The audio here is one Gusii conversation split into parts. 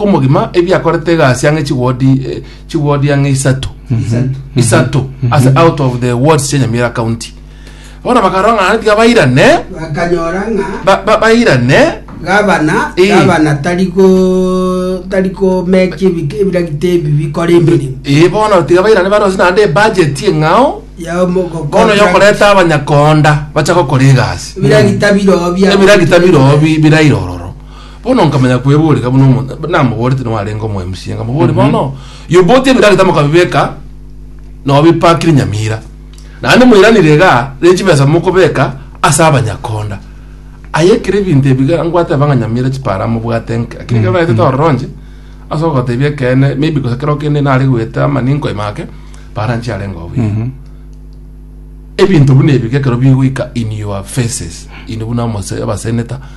omogima ebiakorete egasi ang'e chiwodi eh, chiwodi ang'e isato isato as out of the wards chia nyamira county bona bakarora ng'a tiga bairane bakanyora ng'a ba- ba- bairane gabana Eh. gabana tari go tari komeki ebike- ebiragita ebi bikora emirimo ee bono tiga bairane barose naende ebajeti eng'ao bono yokoreta abanyakonda bacha gokora egasi ebiragita birobia ebiragita birobi birairororo Bono nkamanya kweboreka buna omonto namoborete nao arenge omoemusia, nkamobori bono yoboti ebira gete mokabibeka nao bipakire Nyamira. Naende moiranire iga riri chibesa mokobeka ase abanyakonda. Aye ekero ebinto ebi iga ngwateba ng'a Nyamira chipara mobwate nke. Lakini ekero naete tororonche ase ogotebia ekeene maybe gose kero kende nare goeta amaninko ime ake para nchiarenge oo buya. Ebinto buna ebi iga ekero bigoika in your faces inde buna omose abaseneta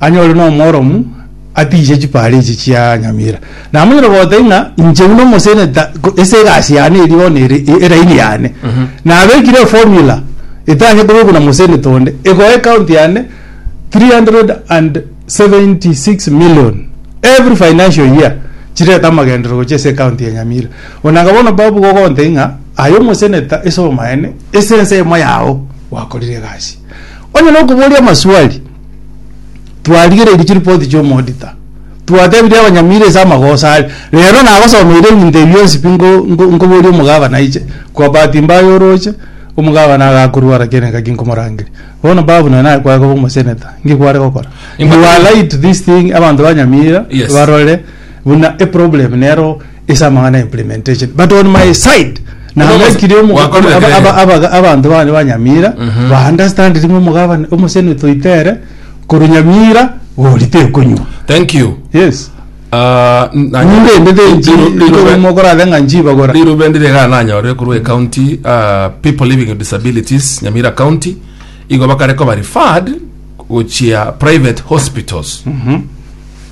Anyore nomworomu atiishe chiparechi chia nyamira, na amanyire gote ng'a inche buna omoseneta ko- ase egasi yane eria bono ere e- eraini yane nabekire eformula etanye kobekwa na moseneta onde egoe ekaunti yane 376 million every financial year chirete amagenderero gochia ase ekaunti ya nyamira onanga bono babu gogontebia ng'a aye omoseneta ase omaene ase ense eyemo yao gwakorire egasi onye nokoboria amaswali. twarigereirie chiripoti chi'omoodita twatebirie abanyamira ase amagoso are rero nagosomeire ebinto ebi bionsi pi nko- nko- nkoboria omogabana aiche kwa bahati mbaya oroche omogabana agakorwara ekiagera engaki nkomorangeria bono babu nonye naye kware koba omoseneta nki kware gokora Nimba- you are right to this thing abanto ba nyamira Yes. barore buna eproblem nero ase amang'ana ya implementation but on my side nabekire omo- Wakorire aba- aba- kere. abaga- abanto bane ba nyamira baunderstandire ng'a omogabane omosene toitere korwa nyamira gori tekonywa thank you yes Ah, n- na- ninde ende tenchi Riru- riru- mokorade ng'a nchibagora rirubendi rega nanyore korwa ecounty uh, people living with disabilities nyamira county igo bakare koba referred gochia private hospitals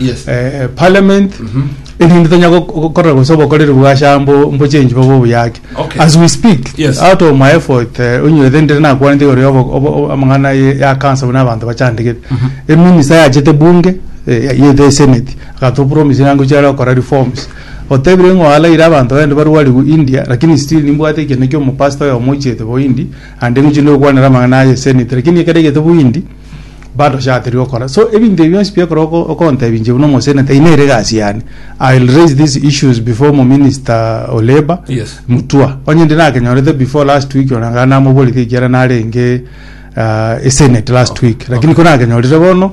Yes. eh, parliament erinde tonya gok- gokora gose obokoreri bwasha mbo mbo change bobe obuyaki Okay. as we speak Yes. out of my effort eh, onyorete ndire nakwanete igoro ya obo- obo- obo- amang'ana ye- ya kansa buna abanto bachandegete eminisa yachete bunge eh, yete eseneti agatopromise nango chiare okora reforms otebire ng'o alaire abanto bende barwariwu india lakini still nimbwate ekende kia omopasta oyo omochiete boindi ande ng'uchi ndokwanera amang'ana aye eseneti lakini ekero egete boindi Barochaterwe okora. So ebinto ebi bionsi biekora oko- okontebia inche buna omoseneta eye nere egasi yane. I will raise these issues before mo minister o labour Yes. Mutua. Onye ndi nakenyorete before last week ona namoborete ekiagera narenge ah, esenate last week. Lakini ko nakenyorire bono